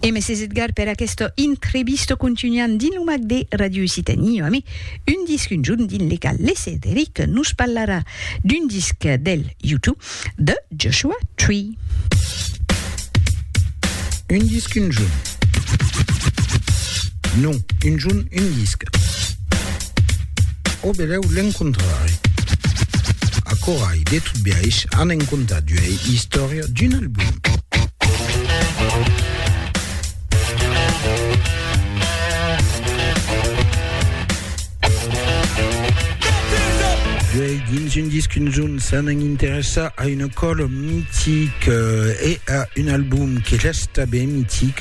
E mèsi Edgar per aquesta entrevista contunham dins lo mac de Radio Occitanie amé un disc un jorn dins le cal le Cederic nos parlarà d'un disc del U2 de Joshua Tree. Un disc un jorn. Non, un jorn, un disc. Au belèu l'encontrarè. Acorai, de tot biais, an en contat d'uei istòria d'un album. Duei dins un disc un zon s'an an interessa a una còla mitic e a un album que resta ben mitic.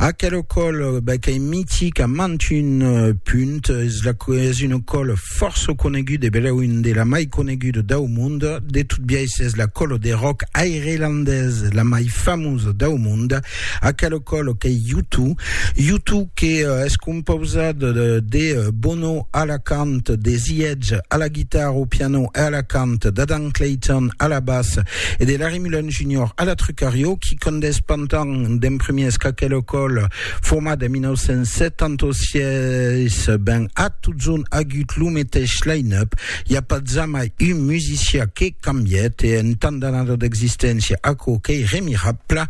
Aquela còla ben, qu'es mitic a mant un punt, es, la, es una còla fòrça coneguda e belèu un de la mai coneguda dau mond. De tot biais, es la còla de rock airelandesa la mai famosa dau mond. A calo colo qu'ei Yutu. Yutu que es compausat de Bono a la cant, de The Edge a la guitarra, au piano e a la cant, d'Adam Clayton a la bass e de Larry Mullen Junior a la trucarió, qui condés pantan d'en premiers qu'a calo colo format en 1976 ben a totson agut lo meteis line-up. I a pas jamai un musician que cambièt e en tant d'anada d'existéncia aquò qu'ei remirabla.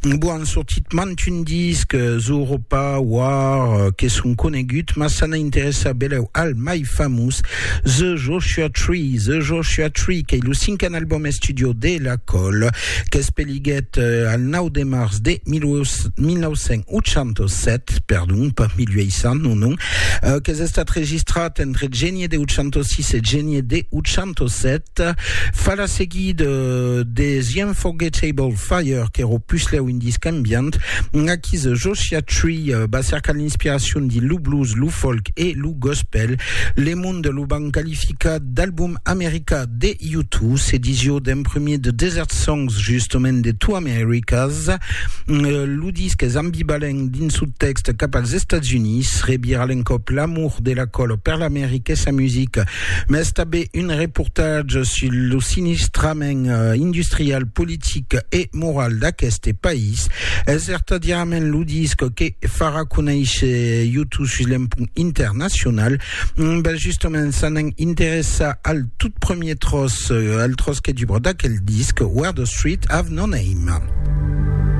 Bon, an sortit mantun disc, Zooropa, War, que son coneguts, mas s'an a interessar belèu al mai famós, The Joshua Tree, The Joshua Tree, qu'ei lo cinquen album estudio de La Colle, qu'es Naiguèt al 9 de març de 1987, perdon, pas 1800, non, non, euh, qu'es estat registrat entre genie de 806 e genie de 807, fa la seguida euh, de The Unforgettable Fire, qu'era o puslèu un disc ambient, aquí The Joshua Tree euh, va cercar l'inspiracion dins lo blues, lo folk e lo gospel. Le Monde lo van qualificar d'album americà De U Two, s'ediciò d'un premier de Desert Songs, justement de Two Americas. Lo disc es ambivalent dins su tèxt cap als Estats Units, rebirà l'encòp l'amor de la còlo per l'America e sa musica, mas tanben un reportatge sus lo sinistrament industrial, politic e moral d'aqueste país. Es vertadièrament lo disc que farà conéisher U Two sus l'empunt internacional. Ben justement, ça n'en interessa al tout premier tros, al tros que dubra d'aquel disc, Where the Street Have No Name.